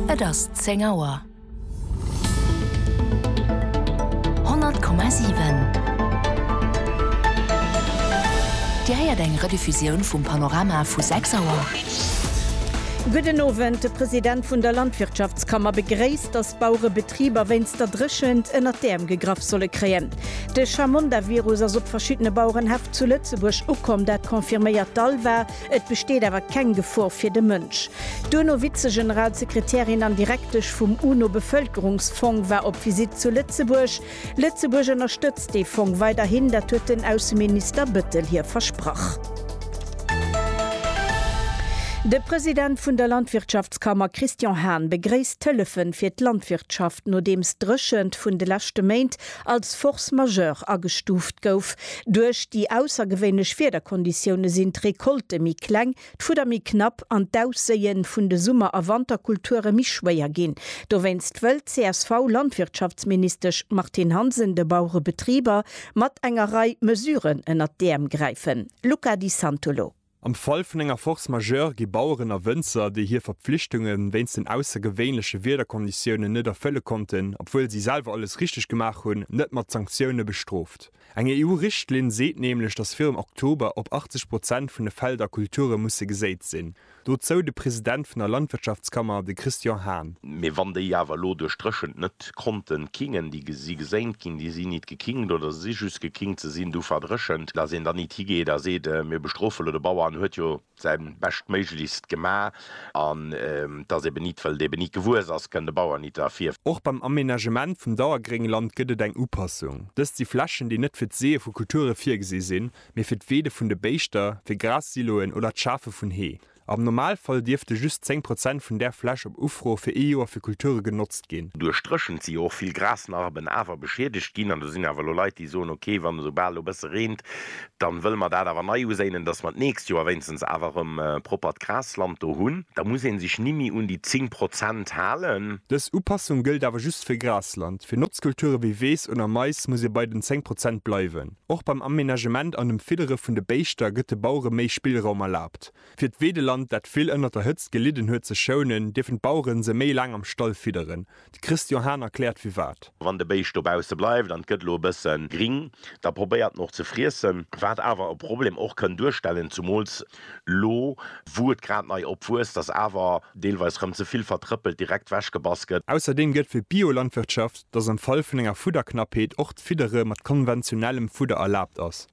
Et ass 10 Auer. 100,7 Dir héiert eng Rediffusioun vum Panorama vu 6 Auer. Gudden Owend. De President vun der Landwirtschaftskammer begréisst, datt d'Bauerebetriber wéinst der Dréchent ënnert d'Äerm gegraff solle kréien. De Chamonda-Virus ass op verschiddene Bauerenhäff zu Lëtzebuerg ukomm, dat confirméiert d'ALVA. Et besteet awer keng Gefor fir de Mënsch. D'UNO-Vizegeneralsekretärin an Direktesch vum UNO-Bevëlkerungsfong war op Visitt zu Lëtzebuerg. Lëtzebuerg ënnerstëtzt dee Fong weiderhin, dat huet den Ausseminister Bettel hir versprach. De President vun der Landwirtschaftskammer Christian Hahn begréisst d'Hëllefen fir d'Landwirtschaft, nodeems d'Dréchent vun de leschte Méint als Force majeure agestuuft gouf. Duerch déi aussergewéinlech Wiederkonditioune sinn d'Recolte méi kleng, d'Fudder méi knapp an d'Ausséie vun de Summer a Wanterkulture méi schwéier ginn. Dowéinst wëll d'CSV-Landwirtschaftsministesch Martine Hansen de Bauerebetriber mat enger Rei Mesuren ënnert d'Äerm gräifen. Luca Di Santolo. Am Fall vun enger Force majeure gi Baueren a Wënzer, déi hir Verpflichtunge wéinst den aussergewéinleche Wiederkonditiounen net erfëlle konnten, obwuel si selwer alles richteg gemaach hunn, net mat Sanktioune bestrooft. Eng EU-Richtlinn seet nämlech, datt virum Oktober op 80 Prozent vun de Felder Kulture musse geséit sinn. Dozou de President vun der Landwirtschaftskammer, de Christian Hahn. Mee wann déi awer elo duerch d'Dréchent net d'Konten kingen déi si geséint ginn, déi sinn nit gekingt oder se si just gekingt, se sinn du verdréchent, datt een dann nit higeet a seet, mir bestrofe lo de Bauer, en huet jo säi beschtméiglechst gema, an datt eben nit, well et eben nit gewuess ass, kënn de Bauer nit derfir. Och beim Amenagement vum Dauergréngland gëtt et eng Upassung. Dëst si Flächen, déi net fir d'Seeë vu Kulture virgesi sinn, mee fir d'Weede vun de Béischter, fir Gras-Siloen oder d'Schafe vun Hee. Am Normalfall dierfte just 10 Prozent vun där Fläch op Ufro fir ee Joer fir Kulture genotzt ginn. Duerch d'Dréchent si jo och vill Grasnarben awer beschiedegt ginn an do sinn awer elo Leit, déi soen, ok, wann esou bal elo e bësse reent, da wëlle mer dat awer nei uséinen, dass mer d'nächst Joer wéinstens awer erëm proppert Grasland do hunn. Da muss ee sech nimmi un déi 10 Prozent halen. Dës Upassung gëllt awer just fir Grasland. Fir Notzkulture wéi Weess oder Mais muss ee bei den 10 Prozent bleiwen. Och beim Amenagement an dem Fiddere vun de Béischter gëtt de Bauere méi Spillraum erlaabt. Fir d'Weedeland, dat vill ënnert der Hëtzt gelidden huet, ze schounen, dierfen d'Bauere se méi laang am Stall fidderen. De Christian Hahn erkläert firwat. Wann de Béischt dobausse bleift an et gëtt elo e bësse gring, da probéiert en och ze friessen, wat awer e Problem och kënn duerstellen, zumools elo wou et grad nei opwuesst, datt awer deelweis rëm ze vill vertrëppelt direkt wechgebass gëtt. Ausserdeem gëtt fir d'Biolandwirtschaft dass am Fall vun enger Fudderknappheet och d'Fiddere mat konventionellem Fudder erlaabt ass.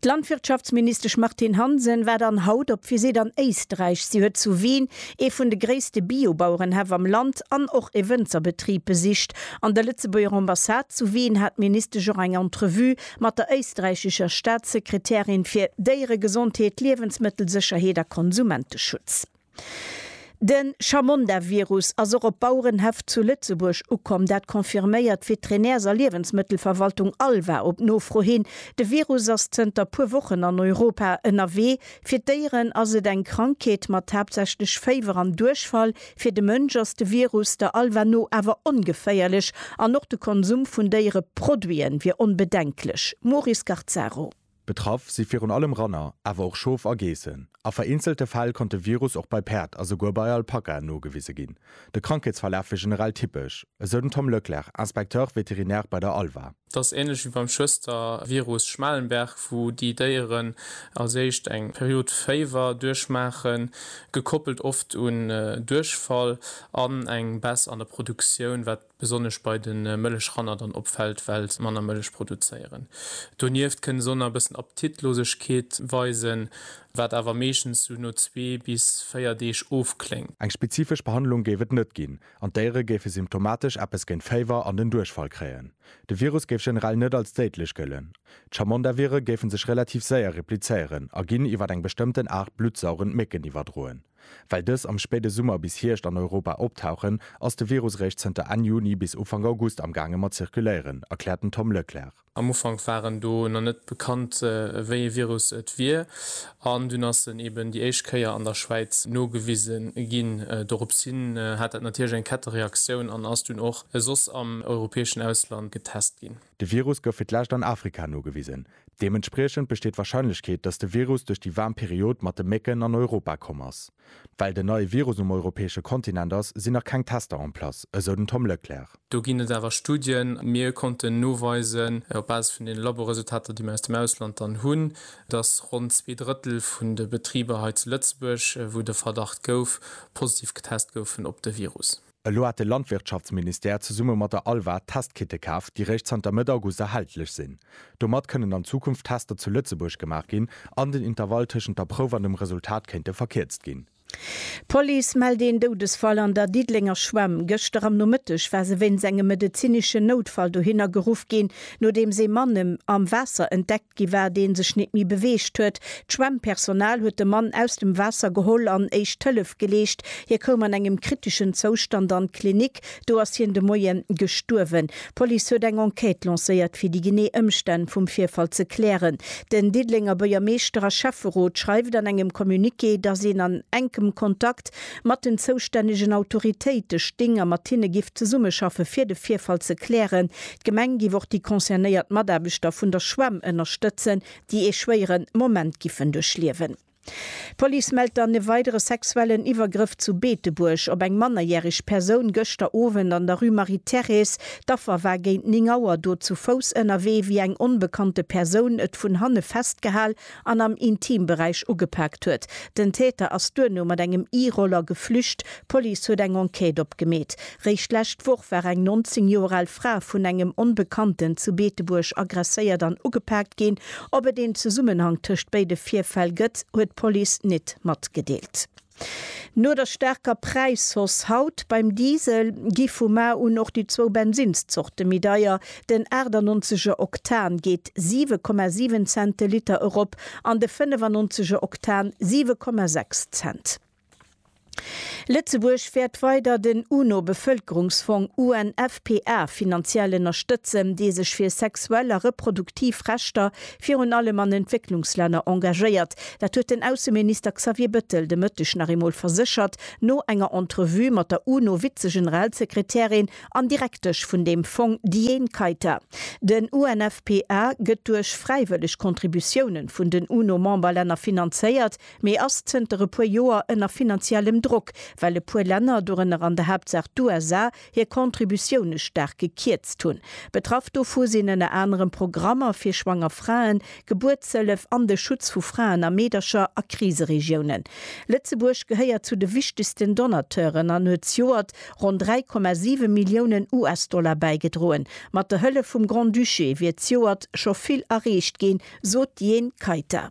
D'Landwirtschaftsministesch Martine Hansen war dann haut op Visitt an Éisträich. Si huet zu Wien ee vun de gréisste Bio-Bauerenhäff am Land an och e Wënzerbetrib besicht. An der Lëtzebuerger Ambassade zu Wien hat d'Ministesch och eng Entrevue mat der éisträichischer Staatssekretärin fir Déieregesondheet, Liewensmëttelsécherheet a Konsumenteschutz. De Chamonda-Virus ass och op Bauerenhäff zu Lëtzebuerg ukomm. Dat confirméiert d'Veterinärs a Liewensmëttelverwaltung Alva op Nofro hin. De Virus ass zënter puer Wochen an Europa ënnerwee. Fir d'Déieren ass et eng Krankheet mat haaptsächlech Féiwer an Duerchfall. Fir de Mënsch ass de Virus der Alva no awer ongeféierlech an och de Konsum vun Déiereproduiten wier onbedenklech. Maurice Garzaro. Betraff si virun allem Ranner, awer och Schof a Geessen. A vereenzelte Fäll konnt de Virus och bei Päerd a souguer bei Alpakaen nogewise ginn. De Krankheetsverlaf wier generell typesch, esou den Tom Leclerc, Inspecteur vétérinaire bei der ALVA. Et ass änlech wéi beim Schwëstervirus Schmalenberg, wou déi Déieren als éischt eng Period Féiwer duerchmaachen, gekoppelt oft un Duerchfall an eng Baisse an der Produktioun, wat Besonnesch bei de Mëllechranner dann opfält, well se manner Mëllech produzéieren. Donieft kënne se och nach e bëssen Appetitlosegkeet weisen, wat awer meeschtens sou no zwee bis véier Deeg ofkléngt. Eng spezifesch Behandlung géif et net ginn an d'Déiere géife symptomatesch eppes géint Féiwer an den Duerchfall kréien. De Virus géif generell net als déidlech gëllen. D'Chamondavire géife sech relativ séier replizéieren a ginn iwwer eng bestëmmten Aart bluttsaugend Mécken iwwerdroen. Well dës am spéide Summer bis Hierscht an Europa optauchen, ass de Virus eréischt zënter Enn Juni bis Ufank August amgaange mat zirkuléieren, erkläert den Tom Leclercq. Am Ufank waren do nach net bekannt, wéi ee Virus et wier, an dunn ass en eben déi éischt Kéier an der Schwäiz nogewise ginn. Dorops hin hat dat natierlech eng Kettereaktioun an ass dunn och soss am europäeschen Ausland getest ginn. De Virus gouf fir d'lescht an Afrika nogewisen. Deementspriechend besteet d'Warscheinlechkeet, datt de Virus duerch déi waarm Period mat de Mécken an Europa komm ass. Well den neie Virus um europäesche Kontinent ass, sinn nach keng Tester en place, esou den Tom Leclerc. Do ginn et awer Studien. Mir konnten noweisen, op Basis vun deene Laboresultater, déi mir aus dem Ausland dann hunn, datt ronn zwee Drëttel vun de Betriber hei zu Lëtzebuerg, wou de Verdacht gouf, positiv getest goufen op de Virus. Elo hat de Landwirtschaftsministère zesumme mat der ALVA Testkite kaf, déi réischt zanter Mëtt August erhältlech sinn. Domat kënnen an Zukunft Tester zu Lëtzebuerg gemaach ginn an den Intervall tëschent der Prouf an dem Resultat kéinte verkierzt ginn. D'Police mellt een Doudesfall an der Diddelenger Schwämm. Gëschter am Nomëtteg war se wéinst engem medezineschen Noutfall dohinner geruff ginn, nodeems ee Mann am Waasser entdeckt Gi war, dee sech nit méi beweegt huet. D'Schwemmpersonal huet de Mann aus dem Waasser geholl an éischt Hëllef geleescht. Hie koum an engem kriteschen Zoustand an d'Klinik. Do ass hien de Moie gestuerwen. D'Police huet eng Enquête lancéiert, fir déi genee Ëmstänn vum Virfall ze klären. Den Diddelenger Buergermeeschter a Schäfferot schreift an engem Communiqué, datt een an enkem Kontakt mat den zoustännegen Autoritéite sting a mat hinne giff zesummeschaffe fir de Virfall ze klären. D'Gemeng giff och déi concernéiert Mataarbechter vun der Schwämm ënnerstëtzen, déi ee schwéiere Moment giffen duerchliewen. D'Police mellt dann e weidere sexuellen Iwwergrëff zu Beetebuerg op eng mannerjäreg Persoun gëschter Owend an der Rue Marie-Thérèse. D'Affer war géint 9 Auer do zu Fouss ënnerwee, wéi eng onbekannte Persoun et vun hanne festgehal an am Intimberäich ugepaakt huet. Den Täter ass duerno mat engem E-Roller geflücht. D'Police huet eng Enquête opgemeet. Réischt d'lescht Woch war eng 19 Joer al Fra vun engem Onbekannten zu Beetebuerg aggresséiert an ugepaakt ginn. Ob et een Zesummenhang tëscht béide Virfäll gëtt, huet d'Police nit matgedeelt. No der staarker Präishausse haut beim Diesel gi vu mar un och déi zwou Bensinnszorte méi deier. Den 98 er Oktan geet 7,7 Cent de Liter erop an de 95 er Oktan 7,6 Cent. Lëtzebuerg wäert weider den UNO-Bevëlkerungsfong, UNFPA, finanziell ënnerstëtzen, dee sech fir sexuell a reproduktiv Rechter virun allem an Entwécklungslänner engagéiert. Dat huet den Ausseminister Xavier Bettel de Mëtteg nach eemol verséchert, no enger Entrevue mat der UNO-Vizegeneralsekretärin an Direktesch vun deem Fong Diane Keita. Den UNFPA gëtt duerch fräiwëlleg Contributiounen vun den UNO-Memberlänner finanzéiert, mee ass zënter e puer Joer ënner finanziellem Drock, well e puer Länner, dorënner an der Haaptsaach d'USA, hir Contributioune staark gekierzt hunn. Betraff dovu sinn ënner anerem Programmer fir schwanger Fraen, Gebuertshëllef an de Schutz vu Fraen a Meedercher a Kriseregiounen. Lëtzebuerg gehéiert zu de wichtegsten Donateuren an huet zejoert ronn 3,7 Milliounen US-Dollar bäigedroen. Mat der Hëllef vum Grand-Duché wier zejoert scho vill erreecht ginn, sot d'Jhene Kayter.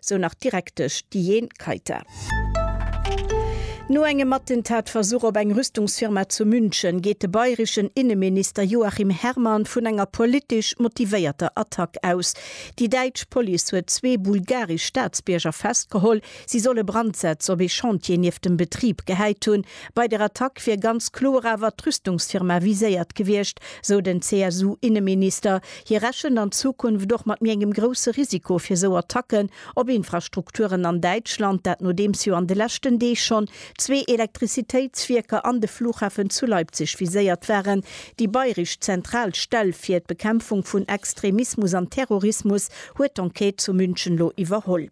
sou nach d'Direktesch Diane Kayter. No engem Attentatversuch op eng Rüstungsfirma zu München geet de bayreschen Inneminister Joachim Herrmann vun enger politesch motivéierter Attack aus. Déi däitsch Police huet zwee bulgaresch Staatsbierger festgeholl, si solle Brandsätz op ee Chantier nieft dem Betrib gehäit hunn, Bei der Attack wier ganz kloer awer d'Rüstungsfirma viséiert gewiescht, sou den CSU-Inneminister. Hie rechent an Zukunft och mat méi engem grousse Risiko fir esou Attacken op Infrastrukturen an Däitschland, dat nodeems jo an de leschten Deeg schonn zwee Elektrizitéitswierker an de Flughafen zu Leipzig viséiert waren. Déi bayresch zentral Stell fir d'Bekämpfung vun Extremismus an Terrorismus huet d'Enquête zu München elo iwwerholl.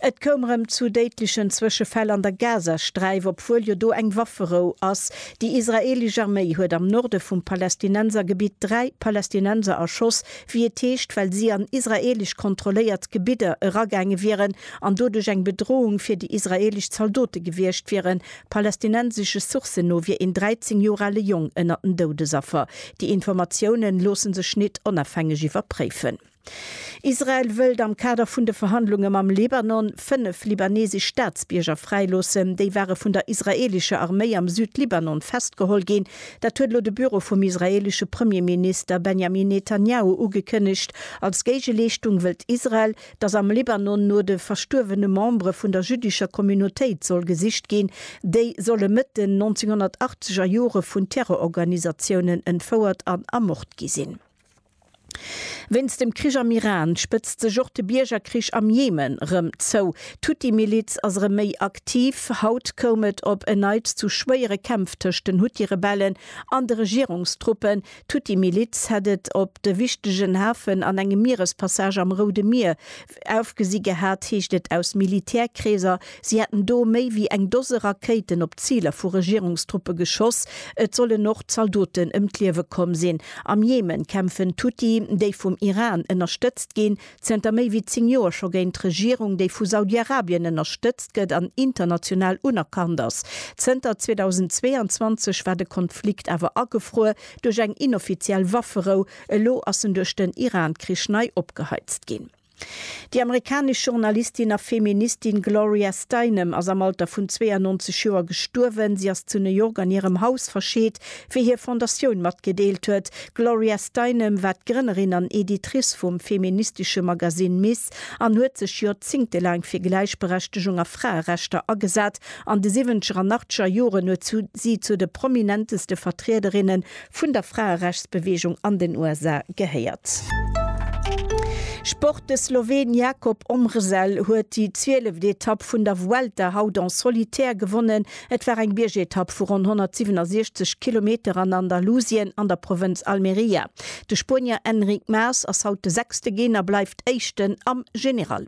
Et koum erëm zu déidlechen Zwëschefäll an der Gazasträif, obwuel jo do eng Wafferou ass. Déi israeelesch Arméi huet am Norde vum Palästinensergebitt dräi Palästinenser erschoss, wéi et heescht, well si an israeelesch kontrolléiert Gebidder eragaange wieren an doduerch eng Bedrohung fir déi israeelesch Zaldote gewiescht wieren. Palästinensesche Sourcen no wier een 13 Joer ale Jong ënnert den Doudesaffer. Déi Informatiounen loosse sech nit onafhängeg iwwerpréifen. Israel wëllt am Kader vun de Verhandlunge mam Libanon fënnef libanesesch Staatsbierger fräiloossen. Déi ware vun der israeelescher Arméi am Südlibanon festgeholl ginn. Dat huet elo de Büro vum israeelesche Premierminister Benjamin Netanjahu ugekënnegt. Als Géigeleeschtung wëllt Israel, datt am Libanon no de verstuerwene Membere vun der jüddescher Communautéit soll gesicht ginn. Déi solle Mëtt den 1980er Jore vun Terrororganisatiounen entfouert an ermort gi sinn. Wéinst dem Krich am Iran spëtzt sech och de Biergerkrich am Jemen rëm zou. D'Huthi-Miliz ass erëm méi aktiv. Haut koum et op en Neits zu schwéiere Kämpf tëscht den Huthi-Rebellen an de Regierungstruppen. D'Huthi-Miliz hätt et op de wichtegen Hafen an engem Mierespassage am Roude Mier Ofgesi gehat, heescht et aus Militärkreeser, si hätten do méi wéi eng Dose Rakéiten op Ziler vu Regierungstruppe geschoss. Et sollen och Zaldoten ëm d'Liewe komm sinn. Am Jemen kämpfen d'Huthi, déi vum Iran ënnerstëtzt ginn, zënter méi wéi 10 Joer scho géint d'Regierung, déi vu Saudi-Arabien ënnerstëtzt gëtt an international unerkannt ass. Zënter 2022 war de Konflikt awer agefruer duerch eng inoffiziell Wafferou, Elo ass en duerch den Iran-Krich nei opgeheizt ginn. Déi amerikanesch Journalistin a Feministin Gloria Steinem ass am Alter vun 92 Joer gestuerwen. Si ass zu New York an hirem Haus verscheet, wéi hir Fondatioun matgedeelt huet. D'Gloria Steinem war d'Grënnerin an Editrice vum feministesche Magasinn Ms. An huet sech joerzéngtelaang fir Gläichberechtegung a Fraerechter agesat. An de siwwenzeger an achtzeger Joren huet si zu de prominenteste Vertriederinne vun der Fraerechtsbeweegung an den USA gehéiert. Sport, De Sloween Jakob Omrzel huet déi zwieleft Etapp vun der Vuelta haut en solitaire gewonnen. Et war eng Biergetapp vu ronn 167 Kilometer an Andalusien an der Provënz Almería. De Spuenier Enric Mas ass haut de sechste Ginn a bleift Éischten am General.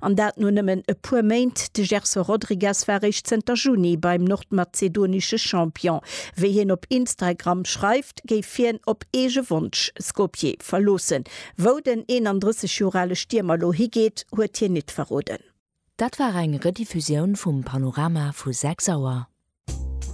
An dat no nëmmen e puer Méint. De Gerson Rodrigues war eréischt zënter Juni beim nordmazedonesche Champion. Wéi hien op Instragram schreift, géif hien op eege Wonsch Skopje verloossen. Wou den 31 Joer ale Stiermer lo higeet, huet hien nit verroden. Dat war eng Rediffusioun vum Panorama vu 6 Auer.